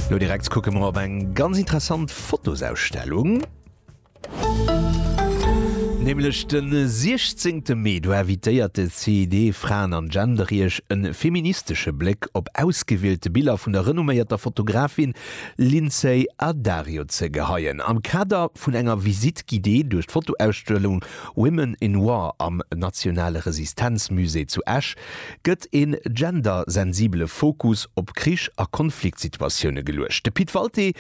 Lo direkt kucke mer op eng ganz interessant Fotosausstellung. Nämlech den 16 Mee, do invitéiert de CID Fraen an Genderriech en feministesche Bléck op ausgewielte Biller vun der renomméierter Fotografin Lindsay Addario ze geheien, am Kader vun enger Visite guidée duerch d'Fotoausstellung Women in War am Nationale Resistenzmusée zu Esch. gëtt e gendersensibele Fokus op Krich a Konfliktsituatioune geluecht. De Pit Walté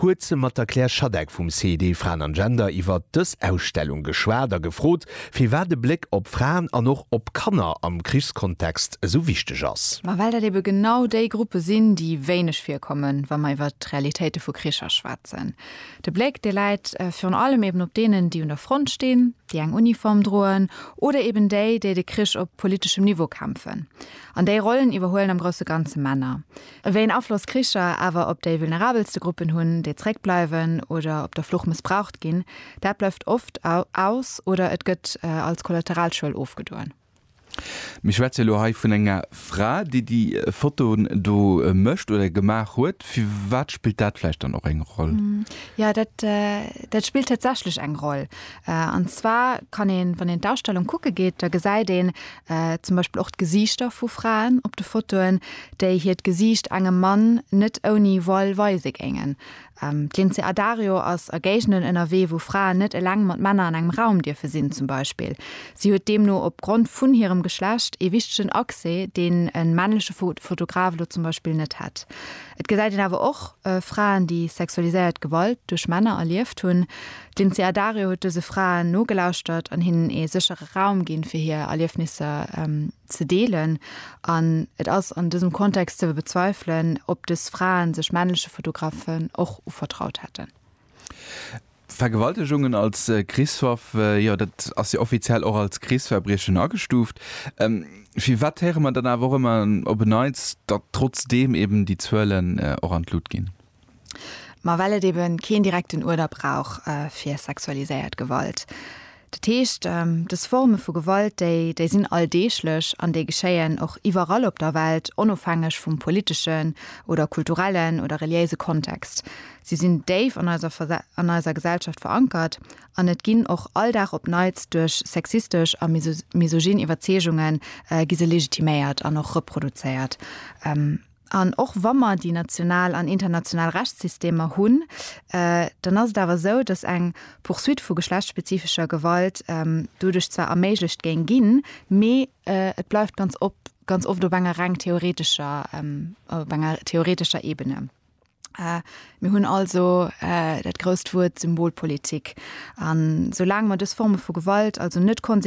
huet mat der Claire Schadeck vum CID Fraen an Gender iwwer dës Ausstellung geschwat a gefrot, firwat e Bléck op Fraen an och op Kanner am Krichskontext esou wichteg ass. Ma well dat ebe genau déi Gruppe sinn, déi wéineg virkommen, wa mer iwwer d'Realitéite vu Kricher schwätzen. De Bléck, dee läit virun allem eben op deenen, déi un der Front stinn, déi eng Uniform droen, oder eben déi, déi de Krich op politeschem Niveau kämpfen. An déi Rollen iwwerhuelen am grousse Ganze Männer. Wéi een Afloss Kricher awer op déi vulnerabelste Gruppen hunn, déi zréckbleiwen oder op der Flucht mëssbraucht ginn, dat bleift oft aus oder et gëtt als Kollateralschuel ofgedoen. Mir schwätze elo hei vun enger Fra, déi déi Fotoen do mécht oder gemaach huet. Firwat spillt dat vläicht dann och eng Roll? Jo, dat, dat spillt tatsächlech eng Roll. An zwar kann een, wann een d'Ausstellung kucke geet, da gesäit een zum Beispill och d'Gesiichter vu Fraen op de Fotoen, déi hiert Gesiicht engem Mann net ouni voile weise géingen. D'Lindsay Addario ass a Géigenden ënnerwee, wou Fraen net eleng mat Männer an engem Raum dierfe sinn, zum Beispill. Si huet deemno opgrond vun hirem Geschlecht ee wichtegen Accès, deen e männleche Fotograf elo zum Beispill net hätt. Et gesäit een awer och Fraen, déi sexualiséiert Gewalt duerch Männer erlieft hunn. D'Lindsay Addario huet dëse Fraen nogelauschtert an hinnen ee séchere Raum ginn, fir hir Erliefnisser ze deelen an et ass an dësem Kontext ze bezweifelen, ob dës Fraen sech männleche Fotografen och uvertraut hätten. Vergewaltegungen als Krichswaff, jo dat ass jo offiziell och als Krichsverbriechen agestuuft. Firwat héiere mer dann awer och ëmmer op en Neits, datt trotzdeem eben déi Zuelen och an d'Lut ginn? Ma well et ebe keen direkten Uerder brauch fir sexualiséiert Gewalt. Dat heescht, dës Forme vu Gewalt, déi déi sinn alldeeglech an déi geschéien och iwwerall op der Welt, onofhängeg vum politeschen oder kulturellen oder reliéise Kontext. Si sinn déif an eiser an eiser Gesellschaft verankert an et ginn och all Dag op Neits duerch sexistesch a misogyn Iwwerzeegunge gi se legitiméiert an och reproduzéiert. An och wa mer déi national an international Rechtssystemer hunn, dann ass et awer esou, dass eng Poursuite vu geschlechtsspezifescher Gewalt doduerch zwar erméiglecht géing ginn, mee et bleift ganz ganz oft op enger reng theoretescher, op enger theoretescher Ebene. Mir hunn also dat grousst Wuert Symbolpolitik. An soulaang mer dës Forme vu Gewalt also net konsequent